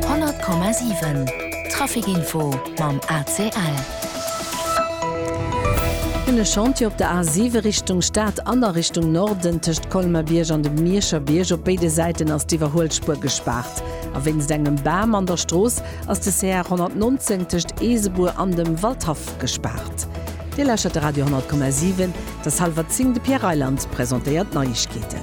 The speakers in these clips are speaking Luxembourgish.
100,7 Trafic-Info mam ACL. E Chantier op der A7 Richtung Stad an a Richtung Norden, tëscht Colmer-Bierg an dem Mierscher Bierg. Op béide Säiten ass d'Iwwerhuelspuer gespaart a wéinst engem Bam an der Strooss ass de CR 119 tëscht Eesebuer an dem Waldhaff gespaart. Dir lauschtert de Radio 10,7. Dës hallwer 10 De Pierre Reyland presentéiert d'Neiegkeeten.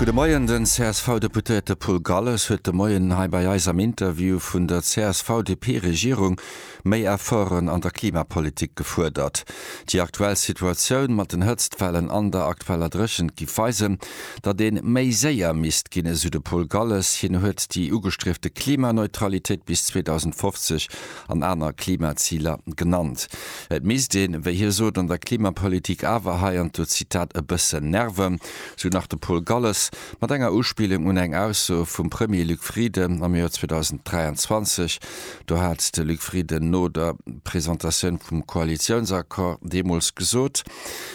Gudde Moien, Den CSV-Deputéierte Paul Galles huet de Moien hei bei eis am Interview vun der CSV-DP-Regierung méi Efforten an der Klimapolitik gefuerdert. Déi aktuell Situatioun mat den Hëtztwellen an der aktueller Dréchent giff weisen, datt ee méi séier misst ginn, esou de Paul Galles. Hien huet déi ugestriefte Klimaneutralitéit bis 2050 an aner Klimaziler genannt. Et misst een, wéi hie sot, an der Klimapolitik awer, hei an do Zitat, e bëssen nerven, sou nach de Paul Galles, mat enger Uspillung un eng Ausso vum Premier Luc Frieden am Joer 2023. Do hat de Luc Frieden no der Presentatioun vum Koalitiounsaccord deemools gesot,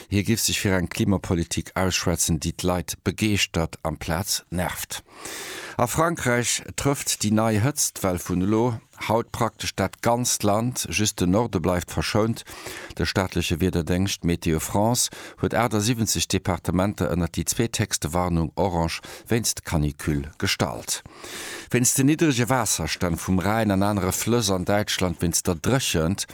hie giff sech fir eng Klimapolitik ausschwätzen, déi d'Leit begeeschtert amplaz nervt. A Frankräich trëfft déi nei Hëtztwell vun elo. Haut praktesch dat ganzt Land, just de Norde bleift verschount. De staatleche Wiederdéngscht Météo France huet 78 Departementer ënnert déi zweethéchste Warnung orange wéinst Canicule gestallt. Wéinst den niddrege Waasserstänn vum Rhäin an anere Flëss an Däitschland, wéinst der Dréchent,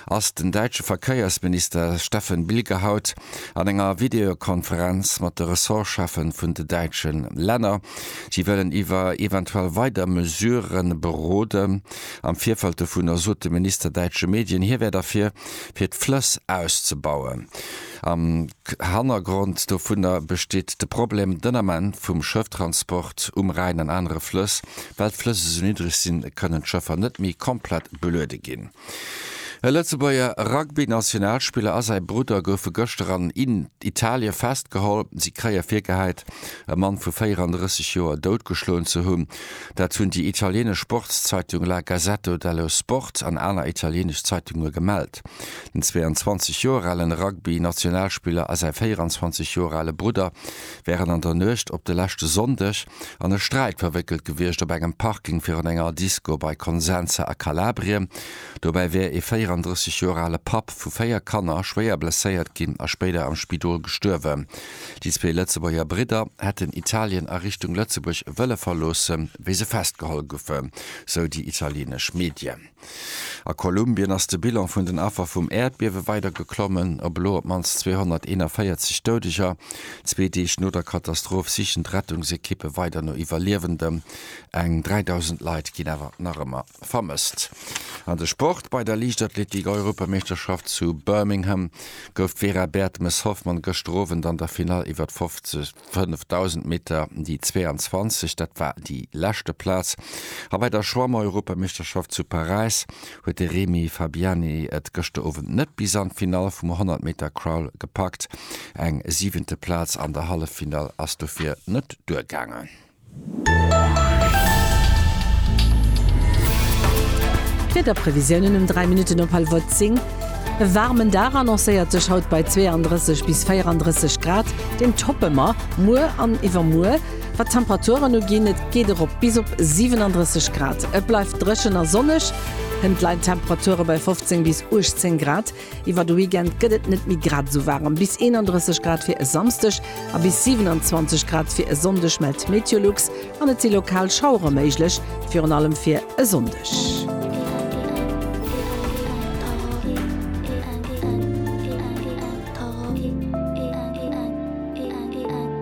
ass den däitsche Verkéiersminister Steffen Bilger haut an enger Videokonferenz mat de Ressortschäffen vun de däitsche Länner. Si wëllen iwwer eventuell weider Mesurë beroden. Am Virfeld dovunner sot de Minister däitsche Medien, hie wär derfir, fir d'Flëss auszebauen. Am Hannergrond dovunner besteet de Problem, den Ament, vum Schëfftransport um Rhäin an anere Flëss. Well d'Flëss esou niddreg sinn, kënnen d'Schëffer net méi komplett Beluede ginn. E Lëtzebuerger Rugby-Nationalspiller a säi Brudder goufe gëschter an Italien festgeholl. Si kréie virgehäit, e Mann vu 34 Joer doutgeschloen ze hunn. Dat hunn déi italienesch Sportszeitung La Gazzetto dello Sport an aner italienesch Zeitunge gemellt. Den 22 Joer alen Rugby-Nationalspiller a säi 24 Joer ale Brudder wären an der Nuecht op de leschte Sonndeg an e Sträit verwéckelt gewiescht op engem Parking virun enger Disco bei Consenza a Kalabrien. Dobäi wär ee 34 Joer ale Papp vu véier Kanner schwéier blesséiert ginn a spéider am Spidol gestuerwen. Déi zwee Lëtzebuerger Bridder hätten Italien a Richtung Lëtzebuerg wëlle verloossen, wéi se festgeholl goufen, sou déi italienesch Medien. A Kolumbien ass de Bilan vun den Affer vum Äerdbiewe weider geklommen. Op elo op d'mannst 241 Doudeger. Zwee Deeg no der Katastroph sichen d'Rettungsekippe weider no Iwwerliewenden. Eng 3.000 Leit ginn awer nach ëmmer vermësst. An de Sport, Bei der Liichtathletik-Europameeschterschaft zu Birmingham gouf d'Vera Bertemes-Hoffmann gëschter Owend an der Finall iwwer 50. 5.000 Meter déi 22, dat war déi leschte Plaz. A bei der Schwamm-Europameeschterschaft zu Paräis huet de Remy Fabiani et gëschter Owend net bis an d'Finall vum 100 Meter Crawl gepackt. Eng siwente Plaz an der Halleffinall ass dofir net duergaangen. D'Wiederprevisiounen um 3 Minutten op Halwer 10, E waarmen Dag annoncéiert sech haut bei 32 bis 34 Grad, deen toppe mer muer an iwwermuer. Wat d'Temperaturen uginn, et geet erop bis op 37 Grad. Et bleift dréchen a sonneg, hënt leien d'Temperature bei 15 bis 18 Grad. Iwwer de Weekend gëtt et net méi grad esou waarem, bis 31 Grad fir e Samsdeg a bis 27 Grad fir e Sonndeg mellt d'Meteolux an et si lokal Schauere méiglech, virun allem fir e Sonndeg.